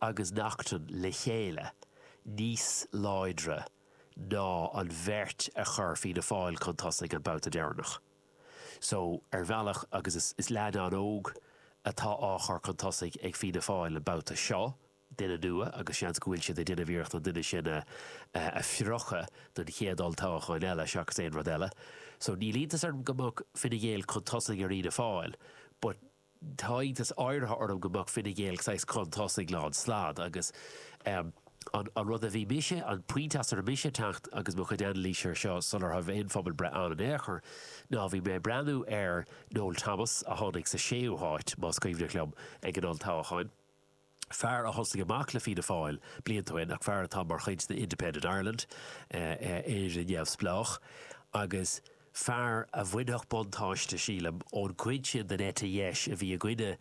agus Neachtan le chéile níos láidre ná an bheirt a chuir Fianna Fáil chun tosaigh an babhta deireanach. So, ar bhealach, agus is leaidán óg atá á chur chun tosaigh ag Fianna Fáil an babhta seo, duine nua, agus seans go bhfuil siad ag déanamh iarracht an duine sin a phriocadh don chéad olltoghchán eile seachas aon rud eile. So, níl iontas orm go mbeadh Fine Gael chun tosaigh ar Fhianna Fáil, but, Tá iontas áirithe orm go mbeadh Fine Gael ag saghas chun tosaigh lán stad agus an rud a bhí mise, an pointe as a raibh mise ag teacht agus mo chuid anailís air seo sula raibh aon phobalbhreith ann in aon chor ná bhí mé ag breathnú ar Noel Thomas a tháinig sa séú háit, más cuimhneach liom, ag an olltoghchán. fear a thosaigh amach le Fianna Fáil blianta ó shin ach fear atá mar chuid de Independent Ireland, Éire Neamhspleách, agus fear a bhainfeadh buntáiste, sílim, ón gcuid sin den eite dheis a bhí i gcoinne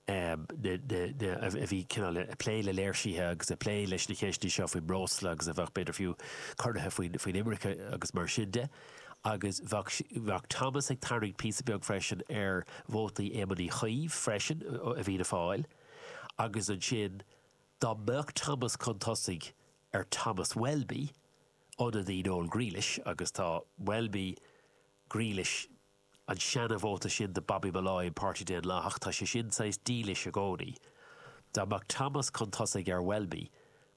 na, a bhí cineál ag plé le léirsithe agus ag plé leis na ceisteanna seo faoin mbreosla agus a bheadh, b'fhéidir fiú, corraithe faoin imirce agus mar sin de. Agus bheadh Thomas ag tarraingt píosa beag freisin ar vótaí Éamoin Uí Chuív freisin i bhFianna Fáil. agus ansin dá mbeadh Thomas chun tosaigh ar Thomas Welby, ionadaí Noel Grealish, agus tá Welby, Grealish, an seana-vóta sin de Bobby Molloy, an Páirtí Daonlathach, tá sé sin saghas dílis i gcónaí, dá mbeadh Thomas chun tosaigh ar Welby,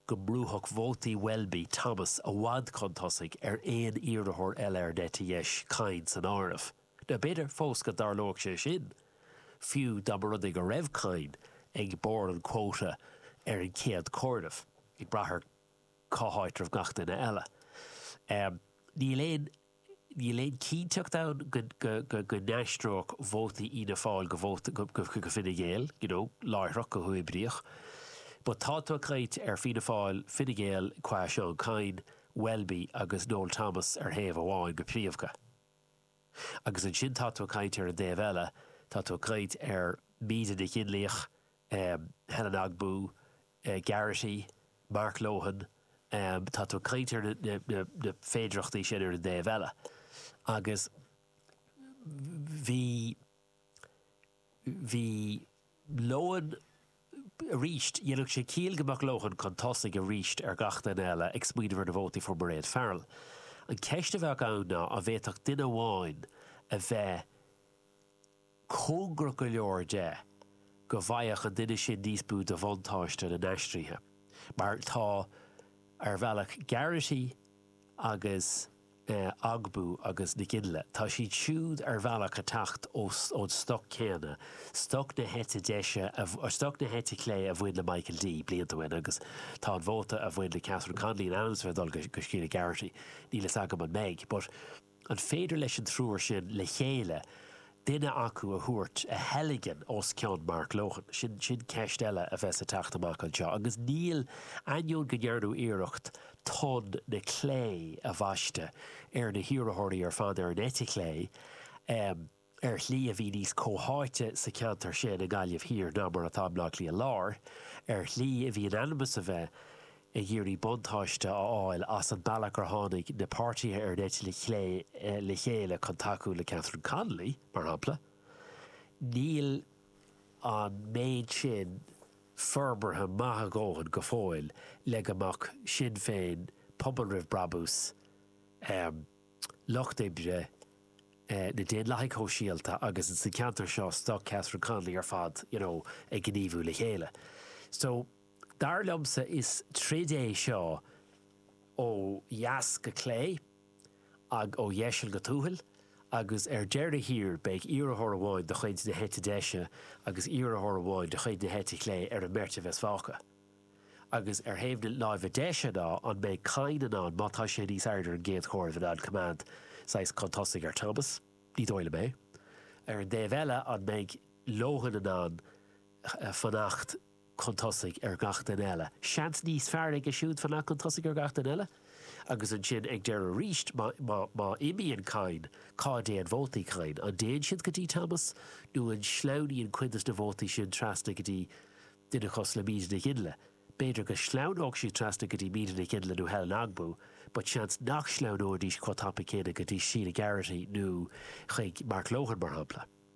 go mbrúfadh vótaí Welby Thomas i bhfad chun tosaigh ar aon iarrthóir eile ar an eite dheis, Kyne san áireamh. Nó b'fhéidir fós go dtarlódh sé sin, fiú dá mba rud é go raibh Kyne ag barr an chuóta ar an gcéad chomhaireamh, ag brath ar cá háit a raibh gach duine eile. Níl aon níl aon chinnteacht ann go go n-aistreodh vótaí Fhianna Fáil go vóta go Fine Gael, you know, láithreach, go huathoibríoch. But tá tú ag caint ar Fianna Fáil, Fine Gael qua Seán Kyne, Welby agus Noel Thomas ar thaobh amháin go príomhdha. Agus ansin tá tú ag caint ar an dtaobh eile, tá tú ag caint ar Míde Nic Fhionnlaoich, Helen Ogbu, Garrity, Mark Lohan, tá tú ag caint ar na féidearthachtaí sin ar an dtaobh eile. Agus bhí. bhí Lohan arís, dhéanfadh sé ciall go mbeadh Lohan chun tosaigh arís ar gach duine eile ag smaoineamh ar na vótaí fuair Mairéad Farrell. An cheist a bheadh ann ná an bhféadfadh duine amháin a bheith cóngarach go leor de go bhfaigheadh an duine sin níos mó de bhuntáiste na n-aistrithe, mar atá ar bhealach Garrity agus. Ogbu agus Nic Fhionnlaoich, tá siad siúd ar bhealach ag teacht ón stoc céanna, stoc na heite deise, stoc na heite clé a bhain le Michael D. blianta ó shin agus tá an vóta a bhain le Catherine Connolly in ainm is a bheith ag dul go Sheila Garrity. Níl fhios agam an mbeidh, but an féidir leis an triúr sin le chéile duine acu a thabhairt, a theilgean os cionn Mark Lohan. Sin, sin ceist eile a bheas ag teacht amach anseo. Agus níl, ainneoin go ndearnadh iarracht Tonn na Clé a bhaisteadh ar na hiarrthóirí ar fad ar an eite chlé, em, ar shlí a bhí níos comhtháite sa cheantar sin, i nGaillimh Thiar, ná mar atá i mBleá Cliath Láir, ar shlí a bhí in ainm is a bheith, ag iarraidh buntáiste a fháil as an mbealach gur tháinig na páirtithe ar an eite chlé le chéile chun tacú le Catherine Connolly, mar shampla, níl an méid sin forbartha maith a dhóthain go fóill le go mbeadh Sinn Féin, Pobal Roimh Brabús, Lucht Oibre, na Daonlathaigh Shóisialta agus insa cheantar seo, stoc Catherine Connolly ar fad, you know, ag gníomhú le chéile. So. Dar liomsa is troid é seo ó dheas go clé agus ó dheiseal go tuathail agus ar deireadh thiar beidh iarrthóir amháin de chuid na heite deise agus iarrthóir amháin de chuid na heite clé ar an mbeirt a bheas fágtha. Agus ar thaobh na láimhe deise ná an mbeidh Kyne in ann, má tá sé níos airde ar an gcéad chomhaireamh, in ann coimeád saghas chun tosaigh ar Thomas? Ní dóigh liom é. Ar an dtaobh eile an mbeidh Lohan in ann fanacht chun tosaigh ar gach duine eile, seans níos fearr aige siúd fanacht chun tosaigh ar gach duine eile, agus ansin ag deireadh arís, má imíonn Kyne, cá dtéann vótaí Kyne? An dtéann siad go dtí Thomas, nó an sleamhnaíonn cuid de na vótaí sin trasna go dtí duine cosúil le Míde Nic Fhionnlaoich? B'fhéidir go sleamhnódh siad trasna go dtí Míde Nic Fhionnlaoich nó Helen Ogbu, but seans nach sleamhnóidís chomh tapa céanna go dtí Sheila Garrity nó chuig Mark Lohan, mar shampla.